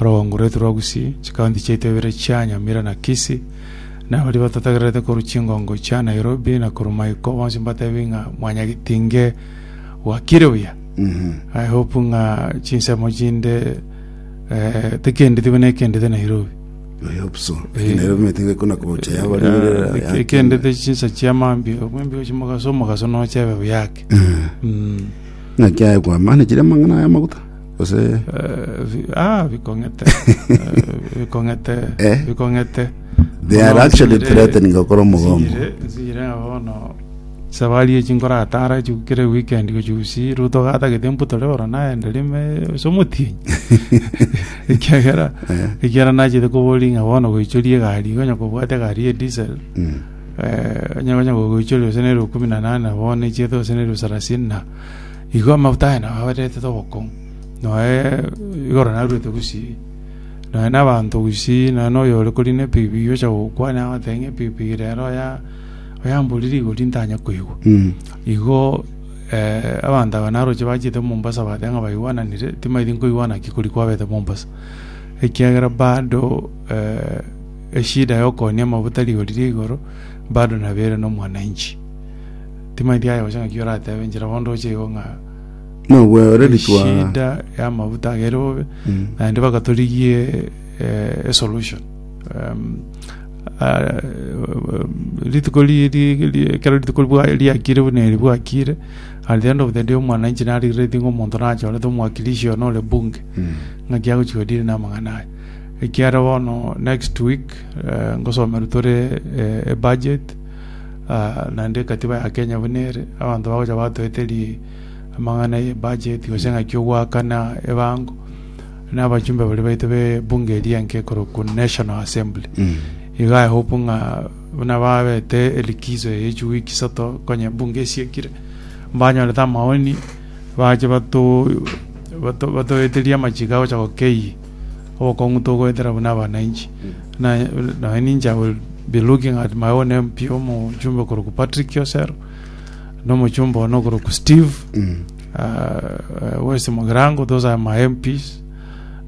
Orogongo rwaito rwa Gusii, chikaunti chiaito ibere chia Nyamira na Kisii, na baria batatagererete korwa chingongo chia Nairobi na korwa Maiko, bonsi mbatebie ng'a mwanyagitinge gwakire buya. I hope ng'a chinsemo chinde eh, tikendeti buna ekendete Nairobi. I hope so. Lakini Nairobi metinga kuna kocha ya bari bere ya- ya- ekendete chinsa chia mambi mwembio chimogaso omogaso nochebe buyake Mm. Ng'a kiaye kwa maana kire mang'ana ya maguta. gose Eh, bi- ah, bikong'ete Eh, bikong'ete Eh? bikong'ete They are Bono actually nsinyire- threatening gokora omogomo. nsinyire- nsinyire ng'a bono sabari echi nkoratara echi kere weekend gochusi ruto gatagete mputore oro naende rime ase omotienyi ekiagera Eh. ekiagera nachete koboria ng'a bono goichoria egari iga onye kobwate egari ya diesel Mm. eh, onye onye goichoria gose nero kumi na nane bono echiete gose nero sarasini na Igo amafuta aye nao abaretete obokong'u, noe igoro naruete gusii, noe nabaanto gusii, noe noyore korina epigipigi gocha gokwania agoteba ng'a epigipigi rero oya oyambori rigori ntanya koigwa. Igo eh, abanto aba naroche bachiete Mombasa bateba ng'a baigwananire, timaeti nkoigwana ki kori kwabete Mombasa, ekiagera bado eh, eshida ya okoonia amafuta rigori ria igoro bado nabere nomwananchi. Timaeti aye gocha ng'aki oratebe inchera bondo oche igo ng'a Nogweoreri twa eshida y'amabuta aga ere bobe Mm. naende baka torigie eh, esolution Em, ah, rituko ri- ri- ri- ekero rituko ribwa- riakire buna eri bwakire at the end of the day omwananchi narigreti ng'a omonto nachorete omwakilishi oyo nore bunge Mm. ng'aki agochi kodiri namang'ana aya ekiara bono next week eh, ngosomerwa tore eh, ebudget naende egatiba ya Kenya buna ere, abanto bagocha batoete ri- amang'ana ye budget, gose ng'aki ogoakana ebango, na abachumbe baria baito be ebunge eria enke ekorokwa National Assembly. Iga I hope ng'a buna babete elikizo eye chi week isato konya ebunge esiekire, mbanyorete amaoni, bache bato- bato- batoeterie amachiko agocha gokei. obokong'u togoetera buna abana inche. Na naye ninche I will be looking at my own MP omochumbe korokwa Patrick Kiosero na omochumbe one okorokwa Steve uh, West Mogirango those are my MPs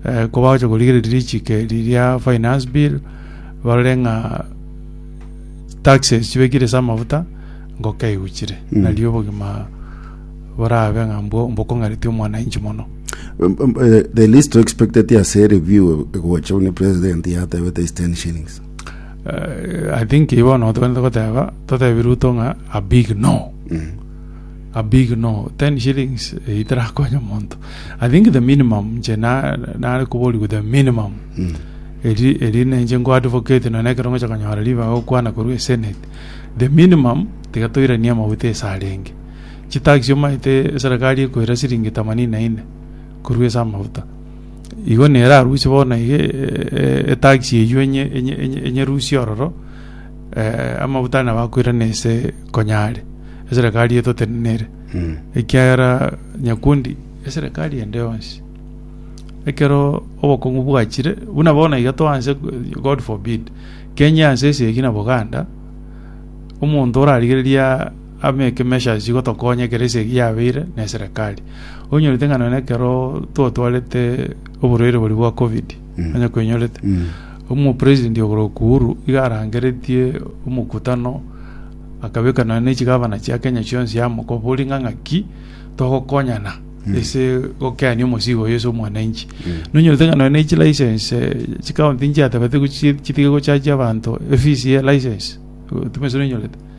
uh, ko bagocha korigereria richiko eri ria finance bill barore ng'a taxes chibekire ase amafuta ngoka eguchire mm. nario obogima borabe ng'a mbwo- mbokong'aretie omwananchi mono. Eh, the least to expected ase review egocha buna president yatebete is 10 shillings Eh, I think ibo bono togende goteba totebi Ruto ng'a a big no a big no 10 shillings eh, itarakonya monto I think the minimum nche na- nare koborigwe the minimum Mm. eri eri nenche nko advocate none ekero ngocha konyora ribaga gokwana korwa esenate the minimum tiga toiranie amaguta esarenge chitax chiomanyete eserekari ekoira siringi themanini na ine korwa ase amafuta igo nere arusie bono iga etax eywo enye enye enye enyerusie ororo eh, amafuta nabo akoirana ase konyare eserekari etotenenere ekiagera nyakundi eserekari ende yonsi ekero obokong'u bwachire buna bono iga toanse god forbid kenya ense ase egi na boganda omonto orarigereria Amo ekemesha aye chigotokonya ekero ase eyio yabeire ne eserekari. Onyorete ng'a nonya ekero twotwarete oborwaire boria bwa covid nonya kwenyorete omopresident igoro Uhuru iga arangeretie omokutano akabeka nonya ne chigabana chia Kenya chionsi yamokobori ng'a ng'aki togokonyana ase gokenia omosigo oyo ase omwananchi. Nonyorete ng'a nonya ne chilicense chikaunti nchiatabete gochi chitige gochajia abanto efees ye license timanyeti nonyorete.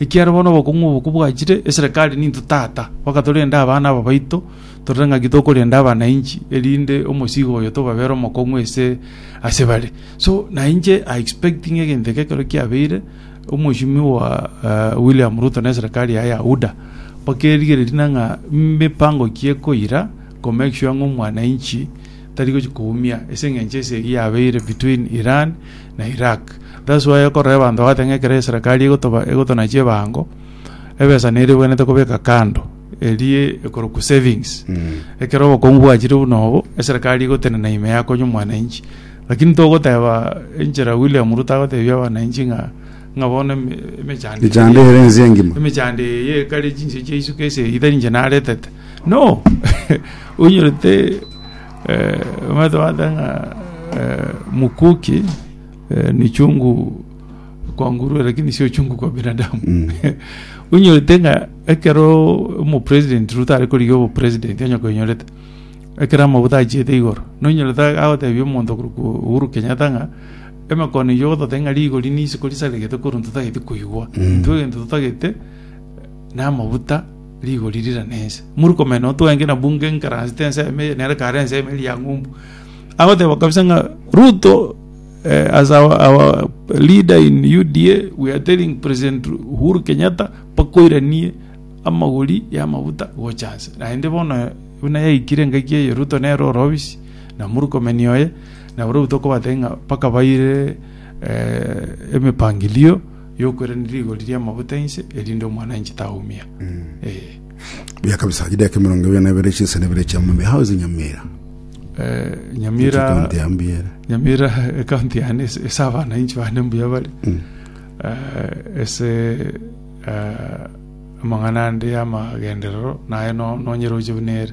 Ekiagera bono obokong'u obo kobwachire, eserekari nintwe tata, mpaka torende abana aba baito, torore ng'aki tokorenda abanainchi, erinde omosigo oyo tobabere omokong'u ase ase bare. So na inche I expect ng'a egento eke ekero kiabeire, omochimi wa eh, William Ruto na eserekari yaye ya UDA, bakerigereria ng'a mipango ki ekoira ko make sure ng'a omwanainchi tari gochia koumia ase engencho ase eyio yabeire between Iran na Iraq that's why okorora abanto bagoteba ng'a ekero eserekari egotoba egotonachia ebango ebesa neri ebwenerete kobeka kando erie ekorokwa savings ekero obokongu bwachire buna obo eserekari egotenena ime yakonya omwananchi lakini togoteba enchera William Ruto agotebia abananchi ng'a ng'a bono eme- emechando eye Echando ere ense engima. emechando eye ekare chinse chia isuka ase erita ninche naretete no onyorete eh, omanyete bata ng'a eh, mukuki eh, ni chungu kwa ngurue lakini sio chungu kwa binadamu Mm. onyorete ng'a ekero omopresident ruto are korigia obopresident onye koinyorete ekero amabuta achiete igoro nonyorete agotebia omonto korokwa uhuru kenyatta ng'a Emekone eyio ogototeba ng'a rigori n'isiko risaregete korwa ntotageti koigwa, intwe egento totagete namaguta rigori rira nense. Muri komenya nao twenge na bunge enkaransi tense eme eye nere kare ense eme eria ng'umbu. Agoteba kabisa ng'a Ruto eh, as our, our leader in UDA we are telling President Uhuru Kenyatta bakoiranie amagori y'amaguta gocha nse. Naende bono buna yaikire engaki eye Ruto nere ore obisi Na Murkomen oye, na barabwo tokobatebia ng'a bakabaire eh, emepangilio y'okweranera rigori ri'amaguta inse, erinde omwananchi taumia. Eh, Buya kabisa, chidaka emerongo ebere na ebere chinsa na ebere chia mombe. How is Nyamira? eh, Nyamira... County ya Mbiere. nyamira ekaunti yane ase ase abananchi bane mbuya bare Eh, ase eh, amang'ana ande y'amagenderero naye no- nonyeroche buna ere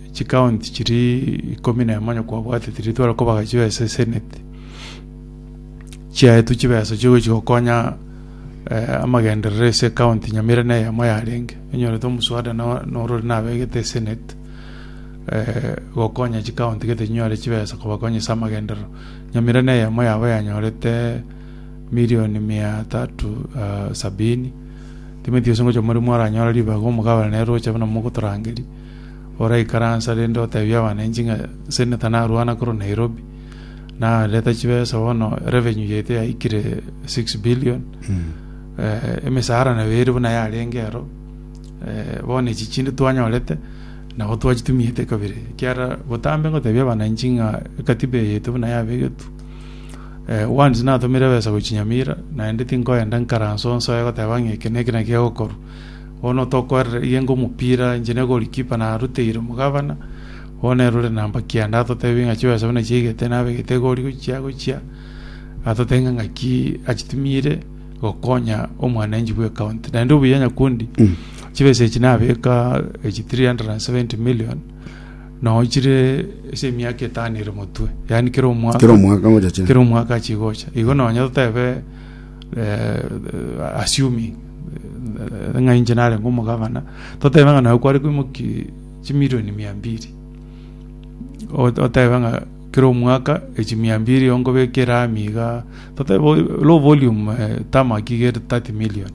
Chikaonti chiria ikomi na emo nyakwabwate tiria tware kobaga chibesa eseneti chiaetwe chibesa chigochi gokonya eh, amagenderero ase ekaonti nyamira na eyemo yarenge enyorete omoswada no- norore nabegete eseneti eh, gokonya chikaonti gete chinyore chibesa kobakonya ase amagenderero nyamira na eyemo yabo yanyorete milioni mia tatu ah, sabini timeti gose ngocha morimo aranyore ribaga omogabane roche buna mogotorangeria oraikaranse are rende otebie abanenchi ng'a seneta narwana korwa Nairobi, nareta chibesa bono revenue yaito yaikire 6 billion eh, emisara nayo ere buna yarenge ero eh, bono echi chinde twanyorete nabo twachitumiete kabere ekiara botambe ngotebia abananchi ng'a ekatiba eye yaito buna yabegetwe eh, once natomire ebesa gochinyamira naende tinkoenda nkaranse onsoe goteba ng'a eke neke naki egokorwa Bono tokoerera iga enga omopira, inche ne goalkeeper naruteire omogabana, bono nere ore namba kianda atotebie ng'a chibasabu nachiaigete nabegete egori gochia gochia, atotebie ng'a ng'aki achitumire gokonya omwananchi bwe county. Naende obuya Nyakundi, chibesa echi nabeka echi 370 million, noo chire ase emiaka etano ere motwe, yaani kera omwaka. Kera omwaka ngocha chire. Kera omwaka achigocha. Igo nonye totebe eh, assuming eh, ng'a inche narenge omogabana totebe ng'a naye kware koimoki chimilioni mia mbiri Ot- otebe ng'a kera omwaka echi mia mbiri onkobekera amiga totebe o- low volume eh, tamaki gere 30 million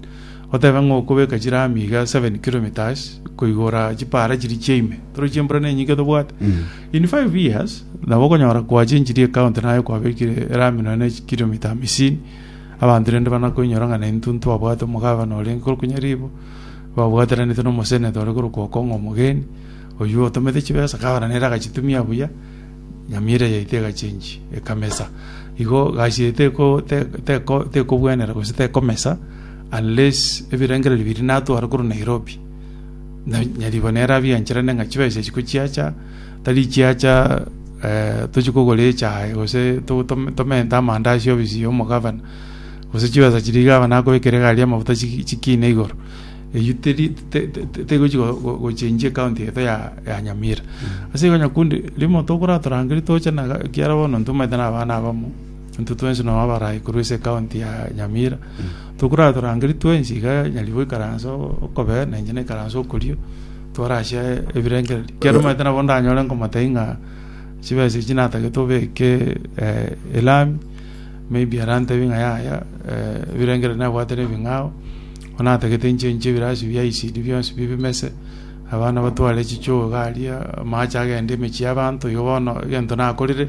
otebe ng'a okobeka chira amiga 7 kilometers koigora chipara chiri chiaime toro chiembura nenyinge tobwate Mm. In five years nabo okonyora koacha enchiri ecounty naye kwabekire erami nonya ne chikilomita hamisini abanto rende bana koinyora ng'a naintwe ntwabwate omogavana orenge korokwa nyaribo babwateranete nomosenator ore korokwa okong'o omogeni oyio otomete chibesa gavana nere agachitumia buya nyamira yaito egachengi ekamesa igo gasi eye teko teko tekobwenera gose tekomesa unless ebirengererio biria natwara korwa Nairobi. na nyaribo nere abiancharane ng'a chibesa echi ko chiacha, tari chiacha eh, tochie kogora echae gose to- tom- tomente amanda ase ofisi y'omogavana gose chibesa chiria gavana akobekera egari y'amafuta chiki- chikine igoro eyio teri te- te- te- tegochi go- go- gochenjia ekaunti yaito ya ya nyamira ase igo nyakundi rimo tokoratorangeria toche na ga- ekiara bono ntomaete na abana abamo Intwe twensi nao abarai korwa ase ekaunti ya Nyamira, tokoratorangerie twensi iga nyarigwe goikaransa okobee na inche naikaranse okorio, twarachia ebirengererio. Ekiagera omanyete nabo ndanyore nkomotebi ng'a chibesa echi natagete obeke eh, elami, maybe arantebi ng'a yaya eh, ebirengererio nabwate nebing'ao, bono natagete nchenchie ebirasi bia ECD bionsi bie bimese, abana batware chichoo iga aria, amache agende emechie y'abanto, igo bono egento nakorire,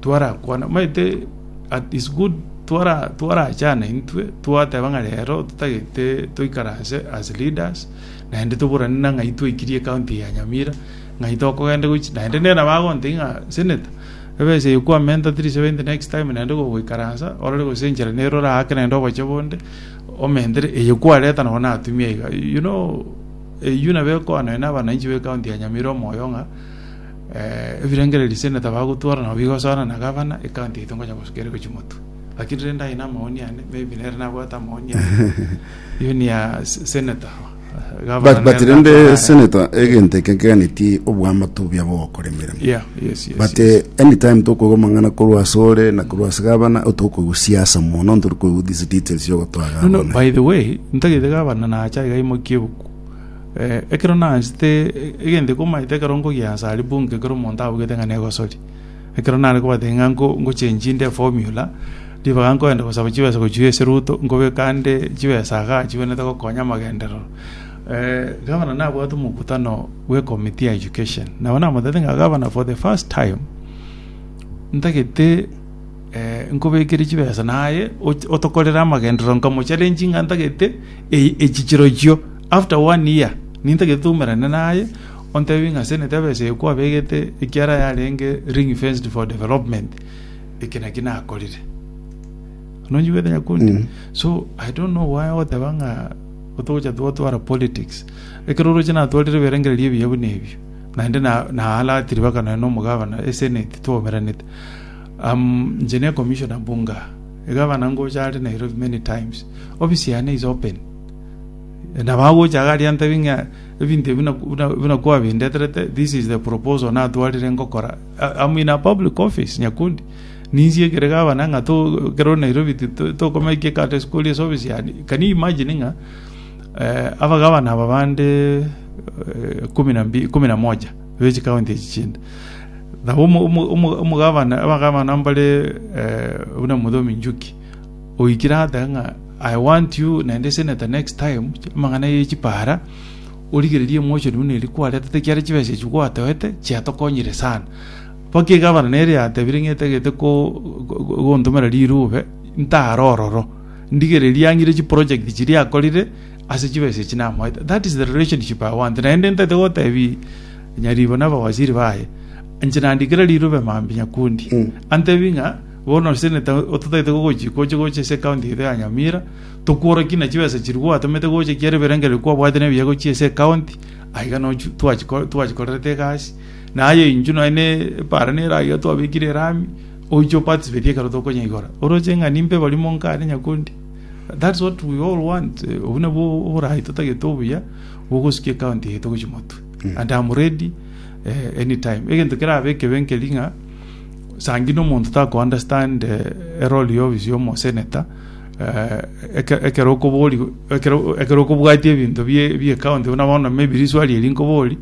Twarakwana, omanyete at is good twara twarachana intwe twateba ng'a rero totagete toikaranse as leaders naende toburane na ng'ai twaikirie county ya Nyamira ng'ai tokogenda gochi naende nere nabo agontebia ng'a senator ebesa eye kwamenta tiri sebainte next time naende gogoikaransa orore gose enchera nere orake naende oboche bonde omentere eye kwareta nabo natumia iga you know eyio nabo ekoa nonya na abananchi be county ya Nyamira omoyo ng'a. Ebirengererio ase ende tabagotwora nabo bigosoana na gavana, ecounty yaito ngonya gosuka ere gochia motwe. Lakini rende aye namaoni ane, maybe nere nabwate amaoni ane. Hiyo ni ya s- senator. Gavana But, but nere rende natwara- senator egento eke nkeganetie obwamato obia bogokora emeremo Yeah, yes, yes, but yes. eh, anytime tokoigwa amang'ana korwa ase ore na korwa ase gavana otokoigwa siasa mono ntori koigwa these details yogotoa No, no, gavana by the way, ntagete gavana nacha iga aimokie ebuku. Ekero naanchete egento ekomaete ekero nkogia Nsaribu inga ekero omonto abugete ng'a negosoria. Ekero nare kobatebia ng'a nko- ngochengi inde eformula, ribaga nkoenda gosaba chibesa gochia ase Ruto, nkobeka nde chibesa igaa chigwenerete gokonya amagenderero. Gavana nabwate omokutano bwe committee ya education, nabo namotebete ng'a gavana for the first time, ntagete nkobekere chibesa naye och- otokorere amagenderero, nkamocharenchi ng'a ntagete eyi echi chirochio. After one year nintagete toumerane naye ontebie ng'a senate ebesa eye kwabegete ekiara yarenge ring fenced for development eke naki nakorire nonchigwete nyakundi mm. so i don't know why ogoteba ng'a otogocha twatwara politics ekero oroche natwarire ebirengererio ebiya buna ebio naende naalatiri na baka naye nomogabana esenate twaumeranete um, nche ne commissioner bunga egabana ngocha are nairobi many times office yane is open nabagocha iga aria ntebi ng'a ebinto ebi buna- buna- buna kwabindeterete this is the proposal natwarire ngokora A- am in a public office nyakundi ninsie ekere gavana ng'a to ekero nairobi ti- to- tokomaikia ekate sikoria ase office yane can you imagine ng'a eh, abagavana aba bande eh, kumi na mbi- kumi na moja be chikaunti echi chinde nabo omo- omo- omo- omogavana abagavana mbare eh, buna muthomi njuki oikire agateba ng'a I want you naende seneta next time amang'ana ye chipara origererie emotion buna eria kwaretete ekiagera chibesa echio gwatoete chiatokonyire sana mpaka egavana nere yatebire ng'a etagete ko go- gontomera rirube ntare ororo ndigereria ang'ire chiproject chiria akorire ase chibesa echi namoete that is the relationship I want naende ntagete gotebia nyaribo na abawaziri baye inche nandi kera rirube mambia nyakundi antebie ng'a. Bono osenete ototagete gogochia gocha gocha ase ekaunti yaito ya Nyamira, tokworokie na chibesa chiria gwatomete gocha chiare ebirengererio kwabwate na ebiya gochia ase ekaunti, aye iga nochi twachiko- twachikorerete egasi. Na aye intwe nonye ne epaara nere aiga twabekire erami, oiche o participate ekero tokonyeigora. Oroche ng'a nimbe barimo nkare nyakundi. That's what we all want, eh, obwo nabwo oboraai totagete obuya, bogosukia ekaunti yaito gochia motwe. And am ready, eh, anytime. Egento kerabe ekebe nkeri ng'a. Sa ng'ina omonto takoandastande erori y'obisi y'omoseneta, ekero okobori, ekero okobwatia ebinto bi'ekaonti buna bono maybe risuwa riria nkobori,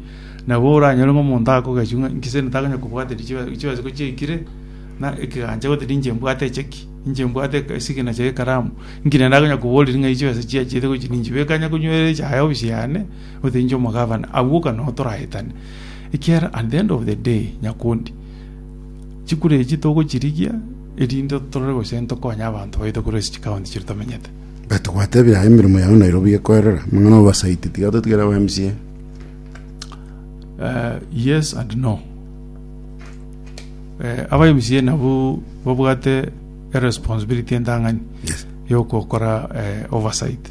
nabo oranyore ng'a omonto akogechwa ng'a inki seneta akonyara kobwate chibesa ko chiaikire, na ekegancha gose ninche mbwate eche ki, ninche mbwate esignature y'ekaramu, inki naende akonyara koboriria ng'a echi chibesa chiachete gochia ninchibeka onye konywera echa yaye obisi yane, gose inche omogavana, agwo oka nabo toraetane. Ekiagera at the end of the day, Nyakundi. Chikura echi togochirigia, erinde torore gose ntokonye abanto baito korwa ase chikaunti chiria tomenyete. But gwatebire aye emeremo yago Nairobi gekoerera, amang'ana obasaiti tiga ototigere aba MCA. Eh, yes and no. Eh, aba MCA nabwo babwate eresponsibility entang'ani Yes. yokokora eh, oversight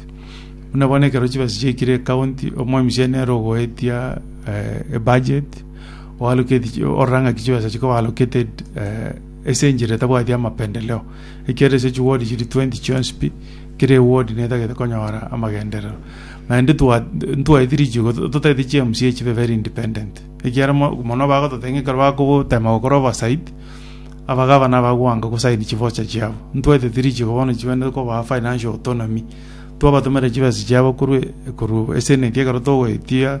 buna bono ekero chibesa chiaikire ecounty omo MCA nere ogoetia eh, ebudget oaroketi orora ng'a ki chibesa chikoba allocated eh, ase enchera etabwati amapendeleo ekiagera ase chiward chiri 20 chionsi pi kera eward netagete konyora amagenderero naende twa- ntwaeti richigo to- totagete chi mca chibe very independent ekiagera mo- mono bagototeba ng'a ekero bakogotema gokora oversight abagabana abagwanka gosaini chivocha chiabo ntwaeteti richigo bono chibende kobaa financial autonomy twabatomera chibesa chiabo korwa korwa SNET ekero togoetia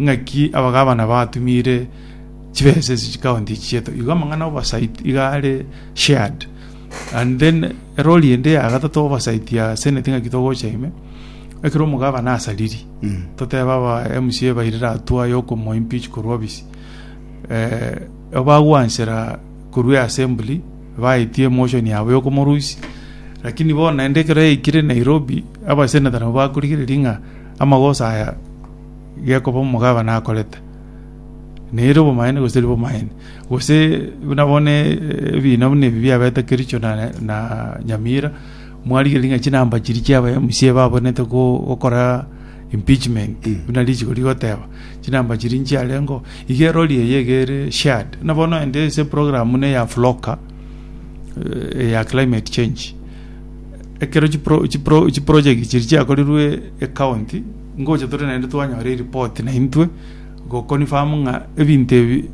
Ng'aki abagabana batumire chibesa echi chikaunti echi chiaito? Igo amang'ana oversight iga are shared. And then erori ende ya gatato oversight ya senate ng'aki togocha ime, ekero omogabana asariri, toteba aba MCA bairire hatua yokomo impeach korwa obisi. Eh, obagwansera korwa assembly, baetie emotion yabo yokomorusia, lakini bono naende ekero yaikire Nairobi, abaseneta nabo bakorigereria ng'a amagosa aya gekoba omogabane akorete, nere obomaene gose tari bomaene, gose buna bono eh, ebina buna ebi biabete Kericho na, na Nyamira, mwarigereria ng'a chinamba chiri chia aba MCA babonete go- gokora impeachment buna richiko rigoteba chinamba chiri nchiarengo iga erori eye egere shared buna bono ende ase program buna eya floka eh, ya climate change ekero chipro- chipro- chiproject chiri chiakorirwe ecounty Ngocha tore naende twanyora eripoti na intwe goconfirm ng'a ebinto ebi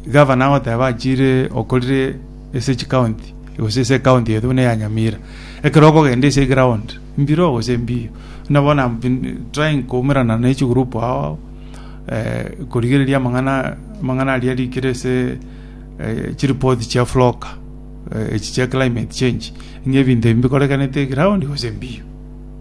gavana agoteba achire okorire ase chikaunti gose ase ekaunti yaito buna eya Nyamira. Ekero okogenda ase egraound mbiro gose mbiya buna bono am been trying koumerana na echigroup ao korigereria amang'ana amang'ana aria arikire ase chiripoti chia floka echi chia climate change ng'a ebinto ebi mbikorekanete egraound gose mbiya.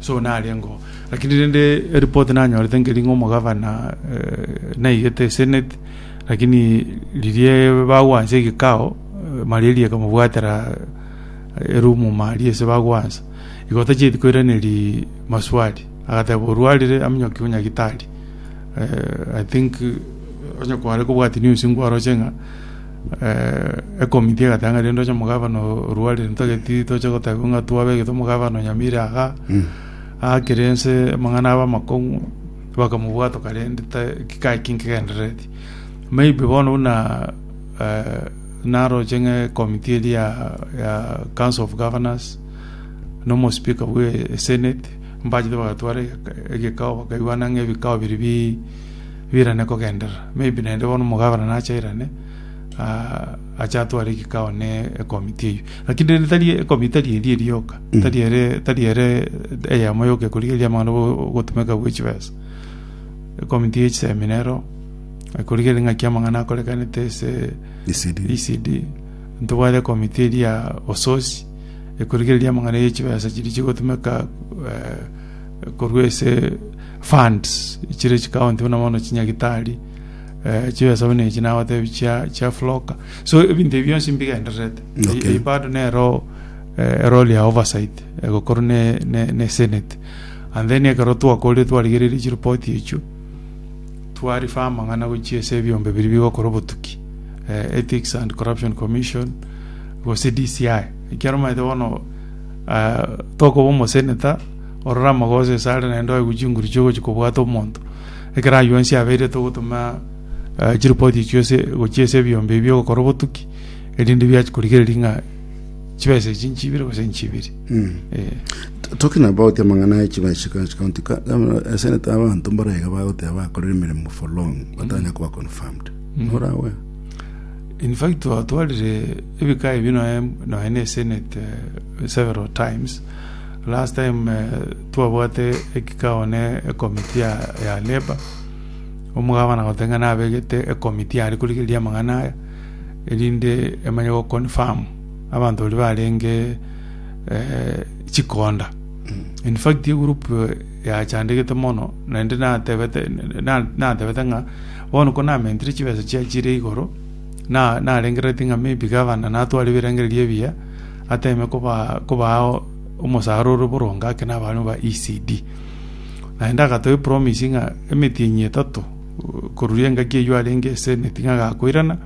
Saul narengeo, lakini rende eripoti nanyorete nkeri ng'a omogavana naigete eseneti, lakini riria bagwansa egekao, malaria ekamobwatera erumu maria ase bagwansa. Igo tachieti koiraneri maswali, agateba orwarire aminyokiwe nyagitari. I think onye kware kobwati news nkwaroche ng'a Ekomiti egateba rende oche omogabana orua riria ntageti toche gotebigwa ng'a twabegete omogabana onyamire iga aakire ense amang'ana abe amakong'u bakamobwatoka rende gikae ki nkegenderereti maybe bono buna naroche ng'a ekomiti eria ya council of governors na omospeaker bwe senate mbachete bagatware egekao bakaigwana ng'a ebikao biria bi. birane kogenderera. Maybe naende bono omogabera nache airane, ah, ache atware ekikao ne ekomiti eyio. Lakini rende tari ekomiti tari eria erioka, tari ere, tari ere eyemo yoka ekorigereria amang'ana bo- ogotumeka gwe chibesa. Ekomiti ye chiseminero, ekorigereria ng'aki amang'ana akorekanete ase ECD. ECD ntobwate ekomiti eria ososi ekorigereria amang'ana ye chibesa chiria chigotumeka eh, korwa ase funds chire chikaunti buna bono chinyagitari eh, chibesa buna echi nagotebi chia chia floka so ebinto ebi bionsi mbigendererete Okay. okay. bado nero eh, eroli ya oversight egokorwa ne, ne, ne senate and then ekero twakorire twarigereire chiripoti echo twarifa amang'ana gochia ase ebiombe biri bigokora obotuki eh, ethics and corruption commission gose dci ekiaro maete bono tokoba omoseneta orore amagoso ase are naende oegwe chinguru chiogochia kobwata omonto ekero aywo onsi abeirete ogotoma eh, chiripoti echio ase gochia ase ebiombe ebi ogokora obotuki erinde biachi korigereria ng'a chibesa echi nchibire gose nchibiri Eh. T- Talking about amang'ana ya chibesa ka- county ka- governor, eh, senator abanto mbaraiga bagoteba bakorire emeremo for long batanya koba confirmed. Norawe? In fact twatwarire ebika ebi nonya nonya ne senate eh, several times last time eh, twabwate ekikao ne ekomiti ya, ya labor omogabana gotenga nabegete ekomiti yare korigereria amang'ana aya erinde emanye go confirm abanto bari barenge eh, chikonda in fact egroup eh, yachandegete mono naende natebete na- natebete ng'a Bono konamentire chibesa chiachire igoro, na narengereretie ng'a maybe gavana natware ebirengererio ebiya, ateme kobaa kobaa omosara ore boronge ake na abaanwa ba ECD. Naende agatoa epromise ng'a emetienyi etato koruria engaki eyio arenge ase emeti ng'a agakoirana,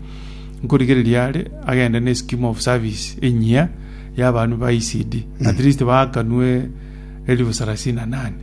nkorigereria are agende ne scheme of service enyia y'abaanwa ba ECD, at least baakanwe elifu sarasini na nane.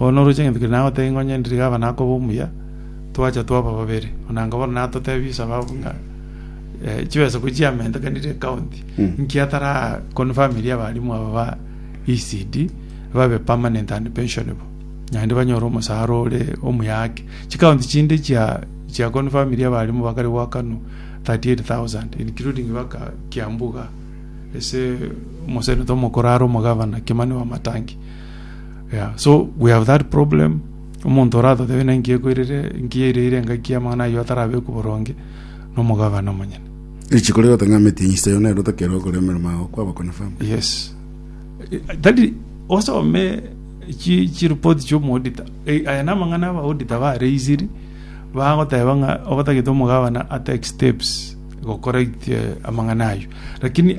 Oo noroche egento keria nagotebie ng'a onye ndiriga aba nakoba omuya, twacha twaba babere. Onanga bono natotebie Esaba abwo ng'a eh, chibesaku chiamentekanire ekaunti, Mm. nki atara confirm eria abalimu aba ba ECD babe permanent and pensionable, naende banyore omosara ore omuya ake. Chikaunti chinde chia chia confirm eria abalimu bakare goakanwa 38,000 including baka Kiambu iga, ase omoseneto omokoro are omogavana Kimani Wamatangi. Yeah, so we have that problem omonto oratotebe na nkiekoirire nkiereire engaki y'amang'ana ayio atarabekwe boronge nomogabana omonyene Richiko rigotang'ameti inse yo nero otakera okora emeremo yao kwaba confirm. yes Eh, tari osome chi chireport chi'omoodita Eh, aya namang'ana abaodita bareisiri bagoteba ng'a obatagete omogabana atake steps gokora itie amang'ana ayio lakini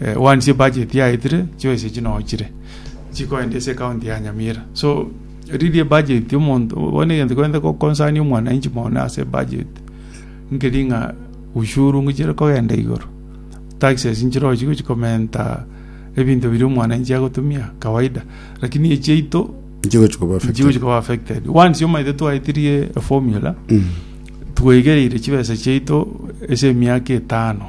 eh, once ye budget yaetire chio ese chinochire chikoenda ase county ya Nyamira so riri budget omonto bono egento kwende ko concern omwananchi mono ase budget nkeri ng'a ushuru ngochire kogenda igoro taxes nchirochi gochi komenta ebinto biri omwananchi agotumia kawaida lakini echiaito Nchigochi koba affected. nchigochi koba affected once omaete twaetirie a formula Mm. tweigereire chibesa chiaito ase emiaka etano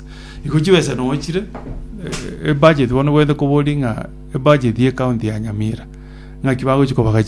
Igo chibesa nochire ebudget bono gwenerete koboria ng'a ebudget ye county ya Nyamira ng'aki bagochi kobagacha.